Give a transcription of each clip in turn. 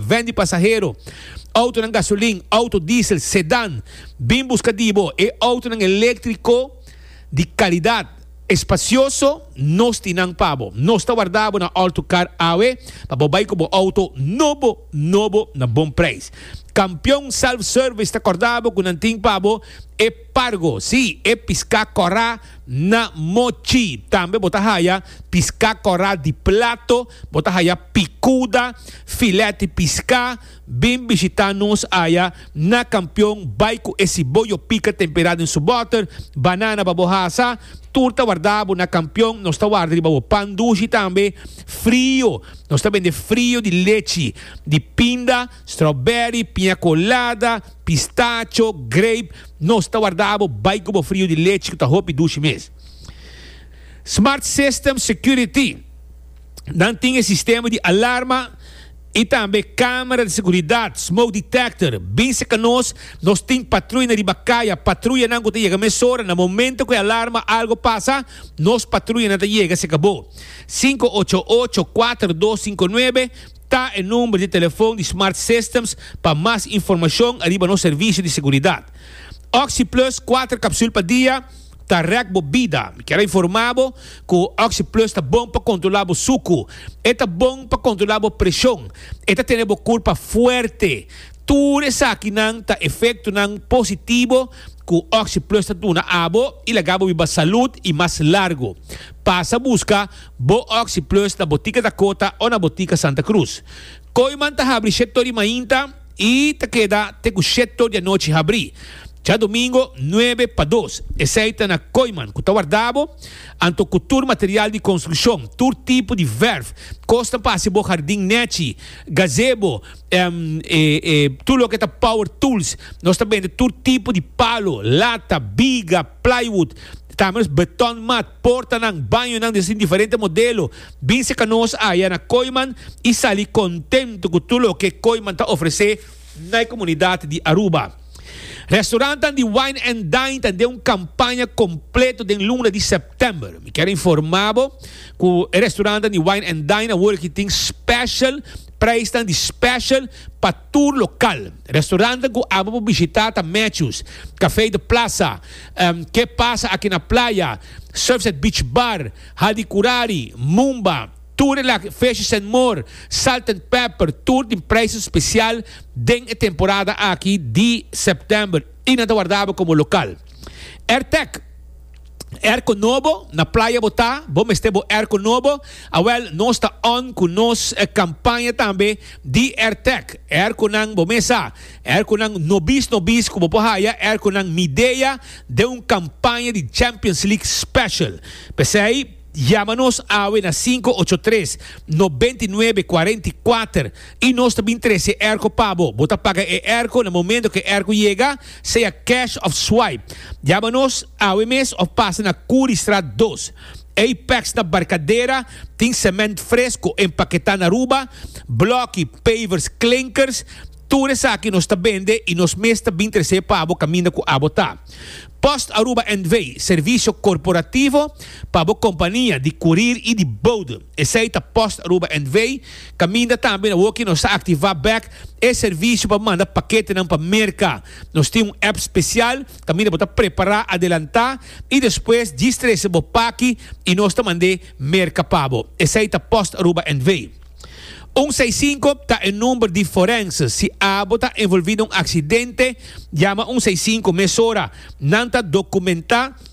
Ven di pasahero, outonan gasolin, outo diesel, sedan. Bin buska di bo e outonan eléktriko di kalidat, espasyoso, nos tin nan pa bo. Nos ta warda bo na Alto Car awe pa bo bai ku bo outo nobo nobo na bon preis. Kampion Self Service ta kòrda bo ku nan tin pa bo e pargo, sí, e piská kòrá, Na Mochi tambe bo ta haya piská kòrá di plato, bo ta haya pikuda, filèt di piská. Bin bishitá nos aya na Kampion bai ku e siboyo pika temperá den su bòter, banana pa bo hasa, tur ta wardabo na Kampion, nos ta warda riba bo pan dushi tambe, frio, nos ta bende frio di lechi di pinda. Strawberry, piña colada, pistacho, grape, nos ta warda bo bai cu bo frio di lechi cu ta hopi dushi mes. Smart System Security, Nan tin e sistema di alarma y tambe camera di seguridad, smoke detector. Bin seca nos, nos tin patruya na riba caya, patruyanan cu ta yega mesora na momento cu e alarma algo pasa, nos patruyanan ta yega seca bo. Cinco ocho ocho, cuatro dos cinco nuebe. Ta e number di telefon di Smart Systems pa mas informashon ariba nos servisio di seguridat. Oxi Plus kuater kapsul pa dia ta rèk bo bida. Mi kier a informá bo ku Oxi Plus ta bon pa kontrolá bo suku. E ta bon pa kontrolá bo preshon. E ta tene bo kurpa fuerte. Tur esakinan ta efektonan positibo ku Oxi Plus ta duna abo i laga bo biba salud i mas largu. Pasa buska Bo Oxi Plus na Botica Dakota o na Botica Santa Cruz. Kooiman ta habri shèt tor di mainta i ta keda te ku shèt tor di anochi habri. Djadomingo nuebe pa dos. Esei ta na Kooiman ku ta warda bo, anto ku tur material di konstrukshon, tur tipo di vèrf, kosnan pa hasi bo hardin nèchi, gazebo, èm, e e tur loke ta power tools. Nos ta bende tur tipo di palo, lata, biga, plywood, Kamers, beton, mat, portanan, bañonan di asin diferente modelo. Bin seka nos aya na Koiman i sali kontentu ku tur loke Koiman ta ofresé na e komunidat di Aruba. Restorantan di Wine and Dine ta den un kampaña kompleto den luna di sèptèmber. Mi kier informá bo ku e restorantan di Wine and Dine awor aki tin special preisnan di special pa tur lokal. Restaurantnan ku abo por bishitá ta Matthews, Café de Plaza, Ke Pasa Aki Na Playa, Surfside Beach Bar, Hadi Kurari, Mumba, Tur e Laki Fish Sen More, Salt and Pepper, tur tin prijzen spesial den e temporada aki di September i nan ta wardabo komo lokal. Rtec. Erko nobo, na playa bo ta, bo mester bo erko nobo, awel nos ta on cu nos campaña tambe di Ertec, erkonan bo mes a, erkonan nobis nobis cu bo por haya, erkonan Midea den un campaña di Champions League special. P'esey yama nos awe na sinku ocho tres, nobenta i nuebe, cuarenta i kuater y nos ta bin trece erko pa bo, bo ta paga e erko na momento cu e erko yega, sea cash of swipe. Yama nos awe mes of pasa na Curiestraat dos. Apex na Barcadera tin cement fresco empaqueta na Aruba, bloki, pavers, klinkers, tur esaki nos ta bende y nos mes ta bin trece pa abo caminda cu abo ta. Post Aruba NV, servicio corporativo pa bo compania di curir y di bode. Esey ta Post Aruba NV. Caminda tambe na hoki nos a activa bek e servicio pa manda paketenan pa Merca. Nos tin un app special caminda bo ta prepara adelanta y despues djis trece bo paki y nos ta mande Merca pa bo. Esey ta PostAruba NV. Un seis cinco ta e number di forense. Si abo ta envolvi na un accidente, yama un seis cinco mesora. Nan ta documenta.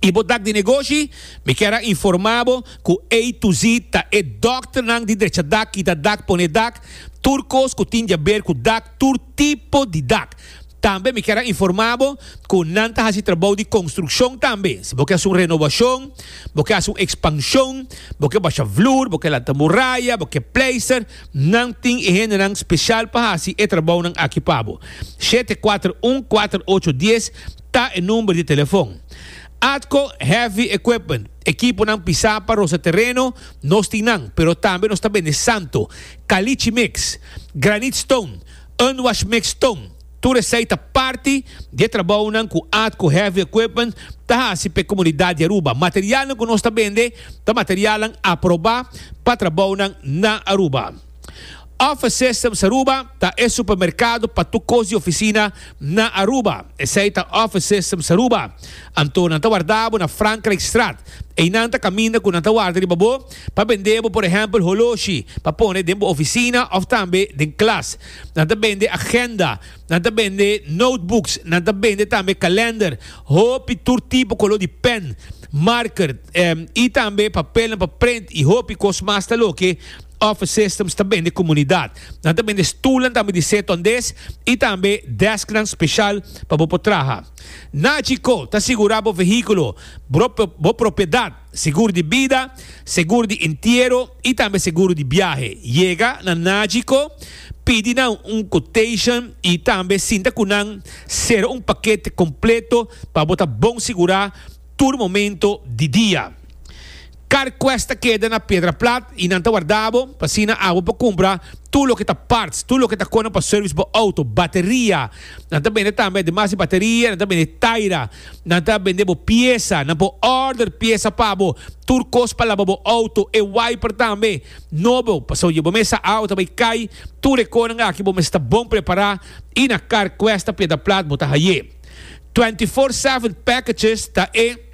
y bo dak di negoshi, mi kier a informa bo cu A to Z ta e dokternan di drecha dak, kita dak, pone dak, tur cos cu tin diaber cu dak, tur tipo di dak. Tambe mi kier a informa bo cu nan ta haci trabou di construccion tambe. Si bo ke haci un renovacion, bo ke haci un expansion, bo ke basha vloer, bo ke lanta muraya, bo ke pleister, nan tin e hendenan special pa haci e trabounan aki pa bo. Shete, kuater, un, kuater, ocho, dies, Ta e number di telefon. Atco Heavy Equipment, ekiponan pisá pa rosa tereno, nos tin nan, pero tambe nos ta bende santo, kalichi mix, granit stone, unwash mix stone, tur esei ta parti di e trabounan ku Atco Heavy Equipment ta hasi pa e komunidat di Aruba. Materialnan ku nos ta bende ta materialnan aprobá pa trabounan na Aruba. Office Systems Aruba ta e supermerkado pa tur kos di ofisina na Aruba. Esei ta Office Systems Aruba. Anto nan ta warda bo na Frankrijkstraat. Einan ta kaminda ku nan ta warda riba bo pa bende bo por ehèmpel holoshi pa pone den bo ofisina òf tambe den klas. Nan ta bende agenda, nan ta bende notebooks, nan ta bende tambe kalènder, hopi tur tipo koló di pèn, marker, i tambe papelnan pa prent i hopi kos mas ta loke. Office Systems ta bende komunidat. Nan ta bende stulnan tambe di seto andes i tambe desknan speshal pa bo por traha. Naci Co. ta sigurá bo vehíkulo, bo propiedat, segur di bida, segur di entiero i tambe seguro di biahe. Yega na Naci Co. Pidi nan un quotation i tambe sinta ku nan sera un pakete kompleto pa bo ta bon sigurá tur momento di dia. Carquest ta keda na Piedra Plat y nan ta warda bo, pa asina awo bo por cumpra tur loke ta parts, tur loke ta cona pa service bo auto, bateria, nan ta bende tambe ademas di bateria nan ta bende taira, nan ta bende bo pieza, nan por order pieza pa bo, tur cos pa laba bo auto, e wiper tambe, nobo, pasobra dje bo mesa awo ta bay cay, tur e conan aki bo mes ta bon prepara y na Carquest ta Piedra Plat bo ta haye. Twenty four seven packages ta e.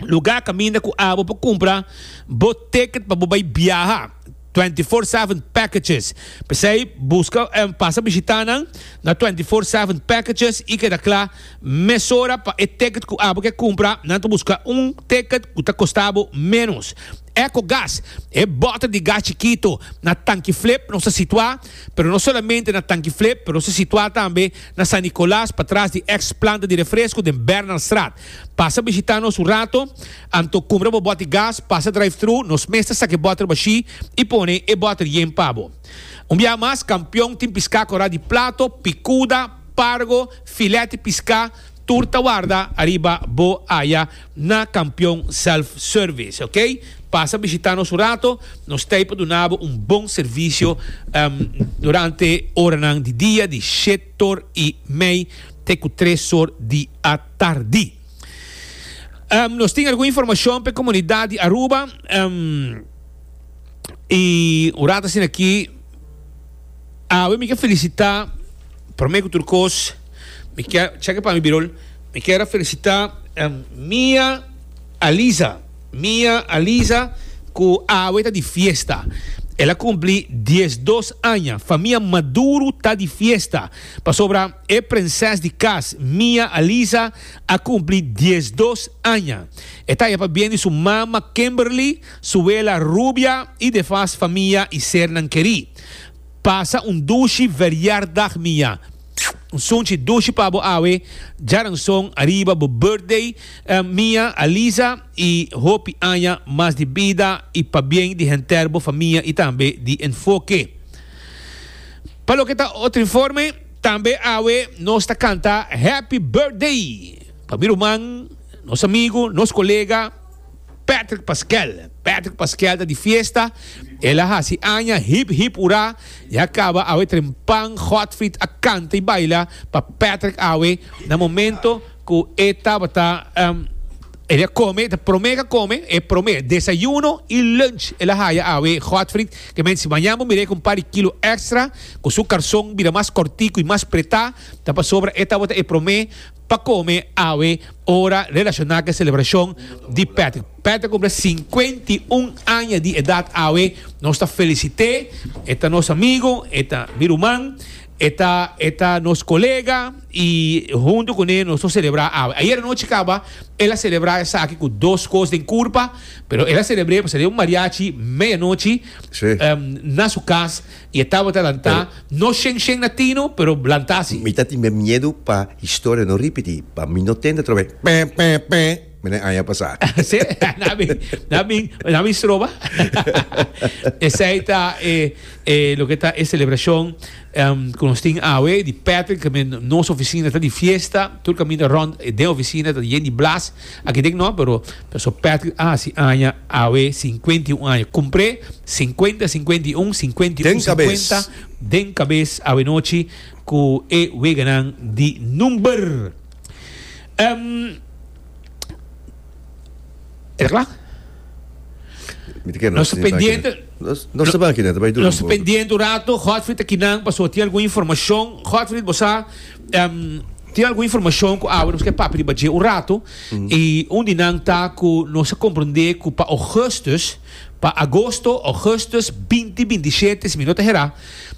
Lugá kaminda ku abo pa kumpra bo ticket pa bo bai biaha, Twenty Four Seven Packages. P'esei buska en pasa bishitá nan na Twenty Four Seven Packages i keda kla mesora pa e ticket ku abo ke kumpra. Nan ta buska un ticket ku ta kosta bo ménos. Ecogas, E bòter di gas chikito na Tanki Flip nos ta situá, pero no solamente na Tanki Flip, pero nos ta situá tambe na San Nicolas patras di eks planta di refresko den Bernalstraat. Pasa bishita nos un rato, anto cumpra bo boti gas, pasa drive-thru, nos mes ta saca e boter bashi y pone e boter yen pa bo. Un biaha mas, Campeon tin pisca cora di plato, picuda, pargo, filet y pisca, tur ta warda ariba bo aya na Campeon Self Service, ok? Pasa bishita nos un rato, nos ta ey pa duna bo un bon servicio durante oranan di dia di shet or y mey te cu tres or di. Tardí. Nos tin algun informashon p'e komunidat di Aruba i un rat asina akí awe mi ke felisitá, promé ku tur kos mi ke, chèk pa mi Birol, mi ker a felisitá Mia Aliza, Mia Aliza ku awe ta di fiesta, el a kumplí diesdos aña, famia Maduro ta di fiesta. Pasobra e prenses di kas Mia Alisa a kumpli diesdos aña. E ta ya pa bien di su mama Kimberly, su wela Rubia i defas famia i sernan kerí. Pasa un dushi verjardagh Mia. Un sunchi dushi pa bo awe, djaranson ariba bo birthday Mia Alisa i hopi aña mas di bida i pa bien di henter bo famia i tambe di Enfoke. Pa loke ta otro informe, tambe awe nos ta canta Happy Birthday pa mi ruman, nos amigo, nos colega Patrick Pasquel. Patrick Pasquel ta di fiesta, el a haci aña, hip hip hura, ya caba awe trempan Godfried a canta y baila pa Patrick awe na momento cu e tabata. El a kome, ta prome ka kome, e prome desayuno i lunch el a haya awe. Godfried ke men si mañan bo mir'é ku un par di kilo èkstra, ku su karson bira mas kòrtiku i mas pretá, ta pasobra e tabata e prome pa kome awe ora relashoná ku e selebrashon di Patrick. Patrick a kumpla sinkuenta i un aña di edat awe. Nos ta felisit'é, e ta nos amigu, e ta mi ruman. E ta e ta nos colega y hunto cu ne nos lo celebra awe. Ayer anochi caba el a celebra esaki cu dos cos den curpa, pero el a celebre pasobra e un mariachi media nochi Sí. na su cas y e tabata lanta, Pero- no shen shen na tino, pero lanta si. Mi ta tin miedu pa historia no ripiti, pa mi no tende atrobe, pè, pè, pè. Mi den aña pasá. Sí, nan bin, nan bin, nan bin stroba. Esei ta e, e, loke ta e celebracion um, ku nos tin awe, di Patrick, ke men nos oficina ta di fiesta, tur kaminda rond e den oficina ta yen di blas, aki dek no, pero so Patrick a hasi aña awe, cincuenta y un aña, kumpré cincuenta, cincuenta y un, cincuenta y Den un, kabes. cincuenta, den kabes awe nochi ku e weganan di number. Ehm, e kla? Mi ta kere Nos ta sin sa pendiente. kina. Nos nos ta ban kina ta bai duro Nos un poco. pendiente un rato, Godfrey ta kinan paso tin algun informacion. Godfrey, bosa em, tin algun informacion ku awe nos ke papia riba dje un rato. I un di nan ta ku nos a komprende ku pa Augustus Pa agosto, augustus, binti binti i shete, si mi no ta herá,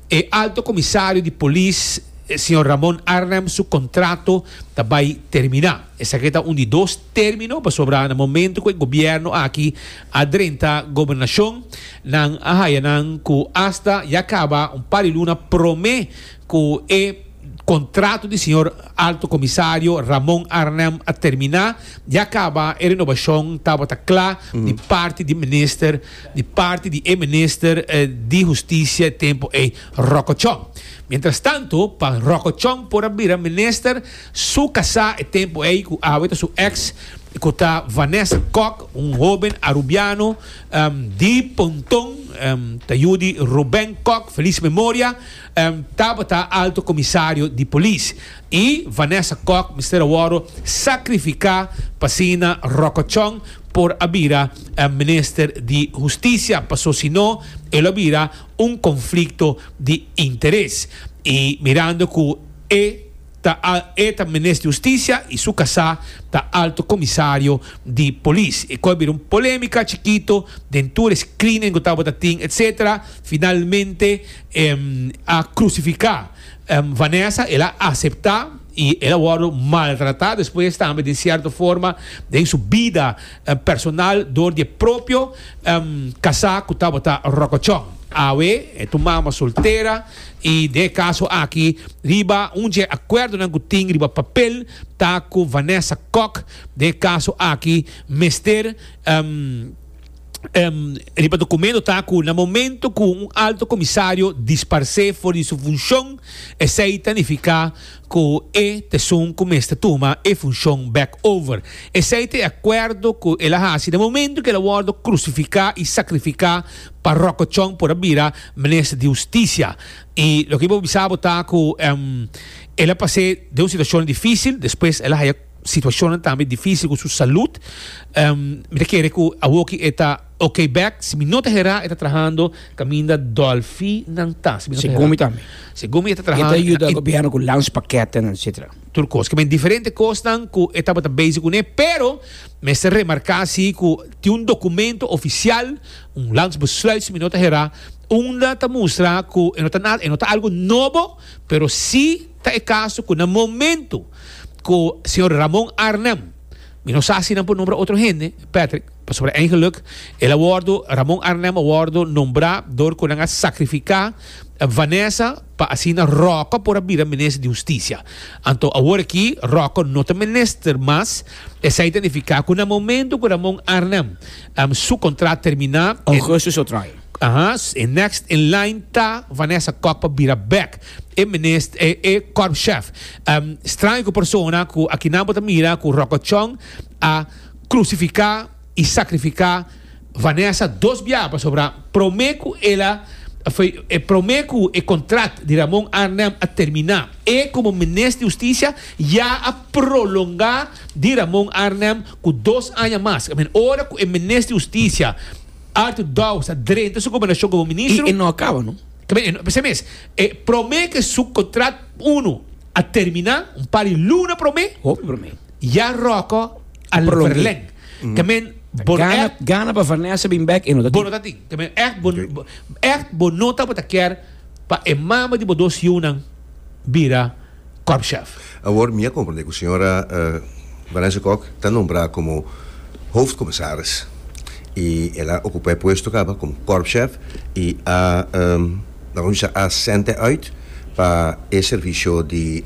e Alto Comisario di Polis, señor Ramon Arnhem, su contrato ta bai terminá. Esaki ta un di dos término, pasobra na momento cu e Gobierno aki a drenta Gobernacion, nan a haya nan cu hasta ya caba un par di luna promé, Cu e contrato di Señor Alto Comisario Ramon Arnhem a termina, di a caba e renobacion tabata cla di parti di Minister, di parti di e Minister di Husticia e tempo ey, Rocochon. Mientrastanto, pa Rocochon por a bira Minister, su casá e tempo ey, cu awe ta su ex, cu ta Vanessa Kok, un hoben Arubiano, di Pontón, ta yu di Ruben Kok, feliz memoria. Tabata Alto Comisario di Polis y Vanessa Kok mester a worde sacrifica pa asina Rokochon por a bira Minister di Husticia paso si no e lo a bira un conflicto di interes y mirando cu e Ta al e ta Minis di Husticia y su casá ta Alto Comisario di Polis. E coi bira un polemica chikito den tur e screening cu tabata tin etc. Finalmente e a crucifica Vanessa, el a acepta y el a wordo maltrata despues tambe den cierto forma den su bida personal door di e propio casá cu tabata rocochon. Awe e tu mama soltera. I den e kaso aki riba un dje akuerdonan ku tin riba papel ta ku Vanessa Kok den e kaso aki mester riba dokumento ta ku na momento ku un Alto Komisario disparsé for di su funshon esei ta nifiká cu e pesun cu mester tuma e funcion bek over. Esey ta e acuerdo cu el a haci den momento cu el a wordo crucifica y sacrifica pa rococon por a bira Minister di Husticia. Y loke mi bo bisa bo ta cu el a pasé den un situacionnan dificil, despues el a haya situacionnan tambe dificil cu su salud. Mi ta kere cu awoki e ta. Ok bek si mi no ta hera e ta trahando kaminda dolfi nan ta si mi no ta hera según mi tambe según mi e ta trahando e ta yuda gobierno ku lunch pakete nan etcetera tur kos kiba diferente kosnan ku e tabata bezi kuné pero mester remarka si ku tin un dokumento ofisial un lunch besluit si mi no ta hera unda ta mustra ku e no ta nada e no ta algu nobo pero si ta e kaso ku na momento ku señor Ramon Arnel mi no sa si nan por nombra otro hende Patrick. Pasobra eigenlijk el a wòrdu, Ramon Arnhem a wòrdu nombrá dor ku nan a sakrifiká Vanessa pa asina Ròkò por a bira Minister di Hustisia. Anto awor aki Ròkò no ta minister mas. Esei ta nifiká ku na momentu ku Ramon Arnhem su kontrat terminá, e next in line ta Vanessa Kok pa bira bèk e minis e kòrpschef. Straño ku persona ku aki nan bo ta mira ku Ròkò Chong a. crucifica y sacrifica Vanessa dos biaha pasobra prome cu el a prome cu e contract di Ramon Arnhem a termina e como Minister di Husticia ya a prolonga di Ramon Arnhem cu dos aña mas. Ora cu e Minister di Husticia Arthur Dows a drenta su gobernacion como Ministro. Y e no a caba no. P'esei mes e prome cu su contract uno a termina un par di luna prome. Hopi prome. Ya Rocco a verleng. Ke men bo no echt. Gana pa Vanessa bin bek e no ta tin. Bo no ta tin. Ke men echt bo echt bo no tabata kier pa e mama di bo dos yiunan bira Corp Chef. Awor mi a comprende ku señora Vanessa Kok ta nombra komo hoofdcommissaris i el a okupá e puesto kaba komo Corp Chef i a Nan usa a sènte uit pa e servisio di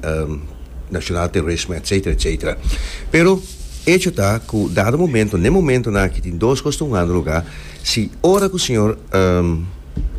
nacional terrorismo etcetera etcetera. Pero echo ta cu dado momento n'e momento nan aki tin dos cos ta hungando lugar, si ora cu señor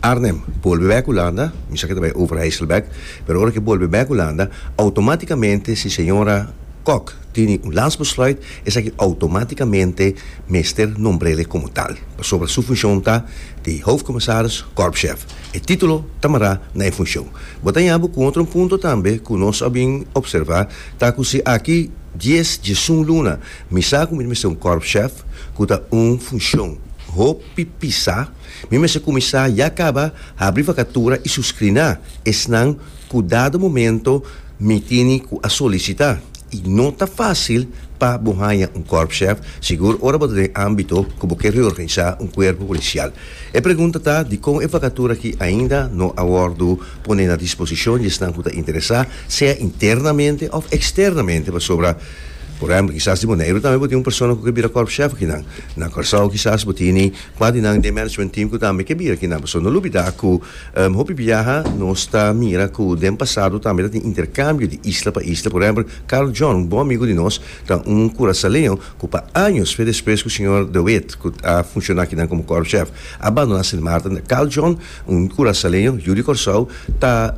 Arnhem bolbe bek Hulanda, mi sa cu ta bay Overijsselbek, pero ora cu e bolbe bek Hulanda automaticamente si señora Kok tini un lansbesluit, esaki outomátikamente mester nombr'ele komo tal, pasobra su funshon ta di Hoofdcommissaris Korpschef. E título ta mará na e funshon. Bo ta yabu ku otro un punto tambe ku nos a bin opservá ta ku si aki dies djesun luna mi sa ku mi ta mester un Korpschef, ku ta un funshon hopi pisá, mi mester kuminsá ya kaba habri vakatura i suskriná esnan ku dado momento, Mi tini ku a solisitá i no ta fásil pa bo haña un kòrpschef, sigur ora bo ta den ámbito ku bo ke reorganisá un kuerpo polisial. E pregunta ta dikon e vakatura aki ainda no a wòrdu pone na disposishon di esnan ku ta interesá, sea internamente òf eksternamente, pasobra, por ehèmpel, kisas di Boneiru tambe bo tin un persona ku ke bira kòrpschef akinan. Na Kòrsou kisas bo tini kua di nan den management team ku tambe ke bira kinan. Pasobra no lubidá ku. Hopi biaha nos ta mira ku den pasado tambe ta tin interkambio di isla pa isla. Por ehèmpel, Carl John, un bon amigu di nos, ta un kurasaleo ku pa años fe despues ku señor De Wit, ku a funshoná akinan komo kòrpschef, a bandoná Sint Maarten. Carl John, un kurasaleo, yu di Kòrsou, ta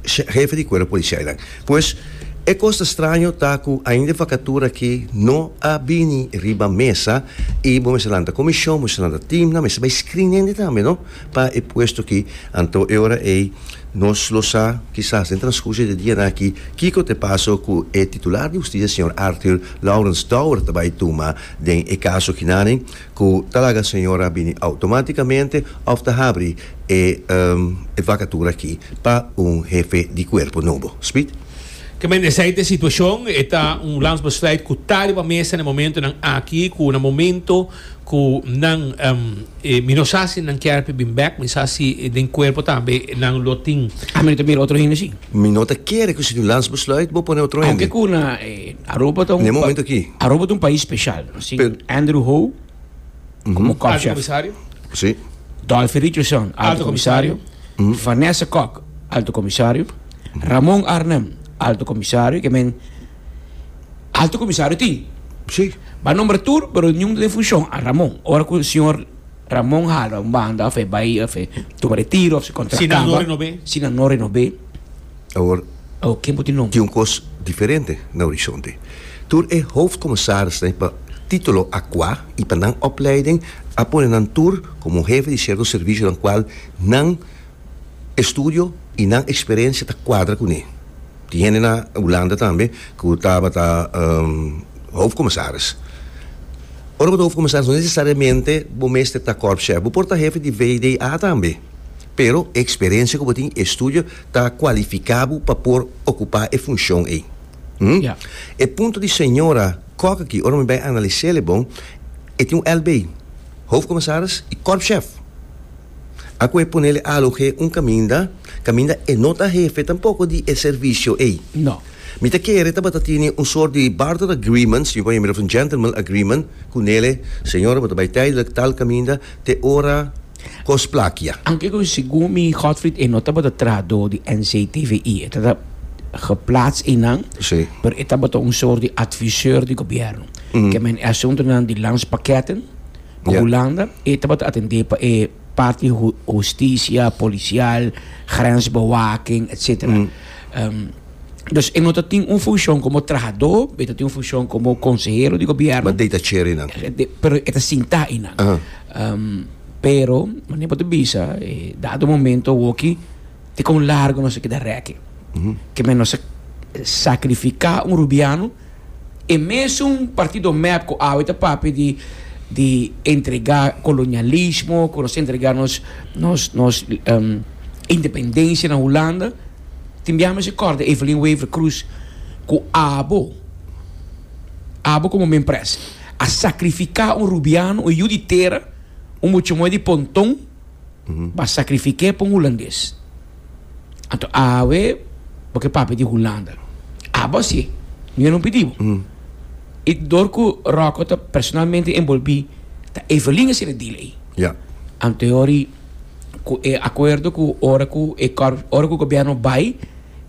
hefe di kuerpo polisia einan. Pues, e kos ta straño ta ku ainda e fakatura aki no a bini riba mesa i bo mester lanta komishon, bo mester lanta team nan, mester bai screenende tambe, no. Pa e puesto ki, anto e ora ei nos lo sa, kisas den transkurso di dianan aki, kiko ta e paso ku e titular di hustisia señor Arthur Lawrence Dower ta bai tuma den e kaso akinane, ku ta laga señora bini outomátikamente òf ta habri e e vakatura aki pa un hefe di kuerpo nobo. Speed. Ke men esei ta e situashon, e ta un landsbesluit ku ta riba mesa na e momentonan aki, ku na momento Cu nan e mi no sa si nan kier pa bin bek, mi sa si den cuerpo tambe nan lo tin. Ah, mi no ta mira otro hende así. Mi no ta kere cu si nu lans besluit bo pone otro hende. Aunke cu na e Aroba ta un. N'e momento aki. Aroba ta un pais special. Nos tin Andrew Howe como Kop Chef. Alto Comisario. Sí. Dolphy Richardson, Alto Comisario. Vanessa Kok, Alto Comisario. Ramon Arnhem, Alto Comisario, ke men. Alto Comisario tin. Sí. Ba nombra tur, pero niun ta den funcion. A Ramon. Ora cu señor Ramon hala un banda of e bay of e tuma retiro of si contract camba. Si nan no renob'e. Si nan no renob'e. Awor. Awor ken bo tin nombra? Tin un cos diferente na horizonte. Tur e hoofdcommissarisnan pa titulo a cua y pa nan opleiding a pone nan tur como hefe di cierto servicio nan cual nan E studio y nan experencia ta cuadra cu ne. Tin hende na Hulanda tambe cu tabata hoofdcommissaris. Ora bo ta hoofdcommissaris no necesariamente bo mester ta korpschef. Bo por ta hefe di VDA tambe. Pero e experencia cu bo tin y e studio ta cualifica bo pa por ocupa e funcion ey. Hm? E punto di señora Kok aki, ora mi bay analise'le bon, e tin un LB, hoofdcommissaris y korpschef. Aku e ponele alu h'e un kaminda, kaminda e no ta hefe tampoko di e servisio ei. No. Mi ta kere tabata tini un sort di barter agreement, si mi por hembra of un gentleman agreement, ku nele, Señor, bo ta bai tijdelijk tal kaminda te ora kos plakia. Anke ku segun mi Godfried e no tabata trahadó di NCTVI, e ta ta geplaats einan, Sí. pero e tabata un sort di advisor di gobièrnu. Ke men e asuntunan di landspaketten, Ku Hulanda e tabata atendé pa e parti hustisia, polisial, grensbewaking, etsetera. Dus e no ta tin un funshon komo trahadó, e ta tin un funshon komo konsehero di gobièrnu. Ma dei ta cheri nan. Pero e ta sintá einan. Pero, manera bo ta bisa, e dado momento awoki te kon largu nos a keda rèki. Ke men nos a sakrifiká un rubiano. E mesun partido mep cu awe ta papia di di entrega colonialismo, cu nos entrega nos nos nos independencia na Hulanda, tin biaha mester corda Evelyn Wever Croes cu abo, abo como mempres, a sacrifica un Rubiano, un yu di tera, un mucho moe di Pontón. pa sacrifiqué pa un hulandes anto awe bo ke papia di hulanda abo así mi no pidi bo y dor cu Rocko ta personalmente envolbi ta Evelyn asina deal ey yeah anto e hori cu e acuerdo cu ora cu e ora cu gobierno bay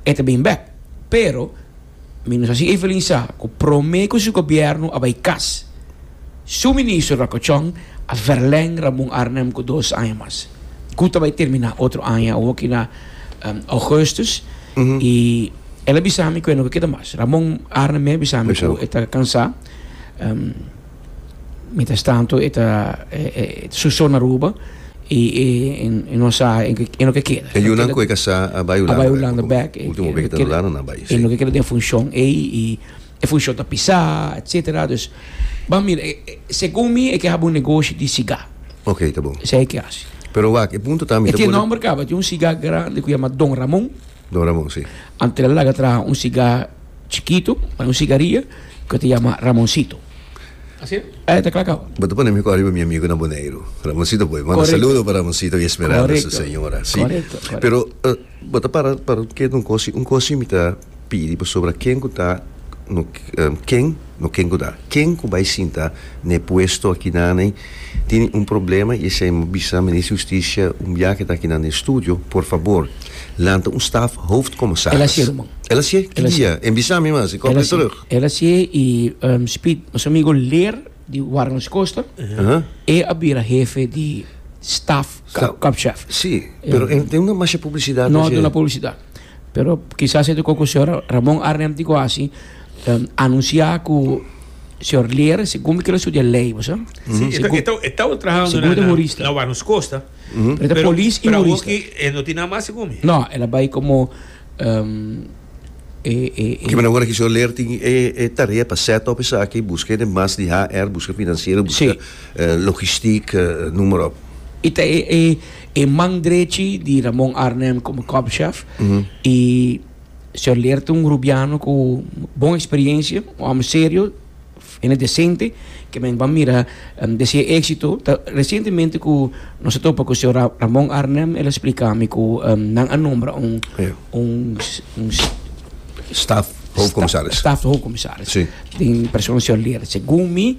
e ta bin back pero Ministracion Evelyn sa cu prome cu su gobierno a bay cas su ministro ra cocion a verleng Ramon Arnhem cu dos aña mas, cu ta bay termina otro aña awo aki na augustus y el a bisa mi cu e no ke keda mas. Ramon Arnhem mey a bisa mi cu e ta cansa. Mientras tanto, e ta susó na Aruba i e no sa e no ke keda. E yunan ku e ka sa a bai Hulanda. A bai Hulanda bèk. Ultimo bes ku ta na Hulanda nan bai. E no ke keda den funshon ei i e funshon ta pisá etsetera. Dus ban mira, segun mi e ke haba un negoshi di sigá. Ok, ta bon. Esei e ke hasi. Pero wak, e punto ta mi ta por. E tin nòmber kaba. E tin un sigá grandi ku yama Don Ramon. Don Ramon, si. Antes di el laga traha un sigá. Chikitu, pa un sigaria, ku e ta yama Ramonsito. Asi e? E ta kla kau? Bo ta pone mi kos riba mi amigunan Boneiru. Ramonsito poi. Manda saludo pa Ramonsito i Esmeralda su señora. Si. Pero, bo ta para pa kiet un kos. Un kos mi ta pidi pasobra ken ku ta no ken. No ken guda. Ken cu bay sinta na e puesto akinane tin un problema y esey mo bisa Minister Justicia un biaha ta akinan den studio, por fabor lanta un staf Hoofdcommissaris. El a cier man. El a cier? Ki dia? En bisa mi mas, e copia terug. El a cier y Speed, nos amigo Leer di Warmers Koster, e a bira hefe di staf, Korpschef. Si, pero e no duna masha publicidad. No a duna publicidad. Pero kisas e ta oko ku señor Ramon Arnhem tin ku hasi, anunsiá ku señor Leer segun mi kila studia lei, bo sa? Sí, e ta e taba trahando na Warnos Costa, pero pra hoki e no tin nan mas segun mi. No, el a bai komo e e e. Kiba nan ora ku señor Leer tin e tarea pa set up esaki, buska hende mas di HR, buska finansiero, buska logistiek, noem maar op. I ta e e. e man drechi di Ramon Arnem como kopchef y señor Leert un Rubiano cu bon experiencia, un hombre serio, hende decente que men va mira em, de si e éxito. Ta recientemente cu nos a topa cu señor Ra- Ramon Arnem, el a explica mi cu em, nan a nombra un, Ja. un, s- un s- Staff, hoofdcommissaris. Staf de hoofdcommissaris. Sí. Den persona señor Leert. Según mi,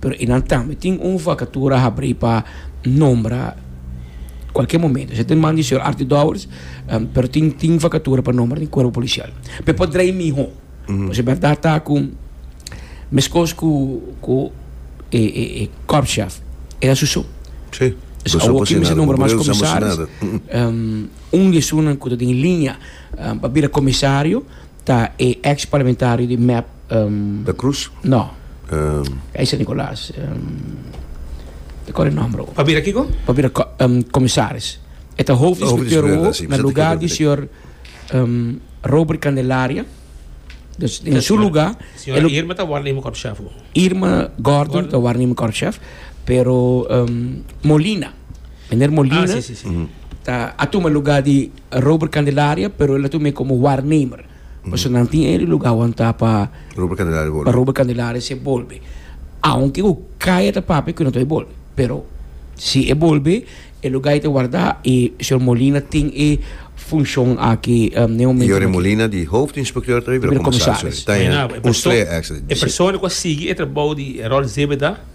Pero e nan tambe tin un vakatura habrí pa nombra kualke momento. Esei ta un man di señor Artie Dowers, em, pero tin, tin vakatura pa nombra den kuerpo polisial. Pe por drei mihó. Pues e bèrdat ta ku, meskos ku, ku e, e, e korpschef, e ta su so. Sí. Pues Boso awor por kin sin mester nada, nombra mas boso por ejemplo, sin comisaris. nada. Em, un di esunnan ku ta den liña em, pa bira comisario, Ta e ex parlamentario di mep. Da Cruz? No. Ka e San Nicolas. Mi kore e nomber awor. Pa bira kiko? Pa bira comisaris. E ta hof inspector awor na luga di señor Robert Candelaria. Dus den su luga. Señora Irma ta warnema korpschef awor. Irma Gordon ta warnema korpschef pero Molina, meneer Molina ta a tuma luga di. Robert Candelaria pero el a tuma e como waarnemer pasobra nan tin e lugar wanta pa Robert Candelaria bolbe pa Robert Candelaria si e bolbe aunke cu cai a ta papia cu e no ta bay bolbe pero si e bolbe e lugar e ta warda y señor Molina tin e funcion aki den e momento y ora e Molina di hoofd inspecteur ta bay bira comisaris ta e un stree accident e persona cu a sigui e trabao di Herold Zebeda.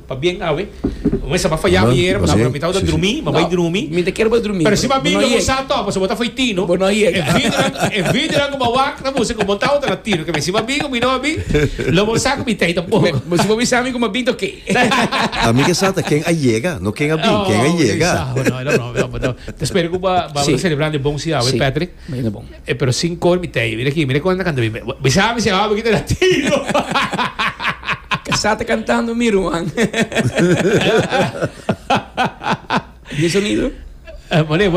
Pabien awe. Un esnan a faya ayer, bo ta awe mitad bo ta drumi, bo bai drumi. Mi ta kier bo drumi. Pero si bo a bini loke bo sa ato, pasobra bo ta foi tino. Bo no yega. E videonan, e videonan ku bo a wak ta busca ku bo ta otro la tino. Ke men si bo a bin o mi no a bin, lo bo sa ku mi ta ei tampoco. Bo si bo bisa mi ku mi a bin ta oke. A mi ke sa ta ken a yega, no ken a bin, ken a yega. Oh, mi ta bisa, bo no, bo no, bo no. Ta spera ku bo a celebran den bon si awe, Patrick. Mira bon. E pero sin cor mi tei. Mira aki, mira con e ta canta bien. Mi sa mi si aho poquito latino. Casá ta cantando mi ruan. Di e sonido. Mane.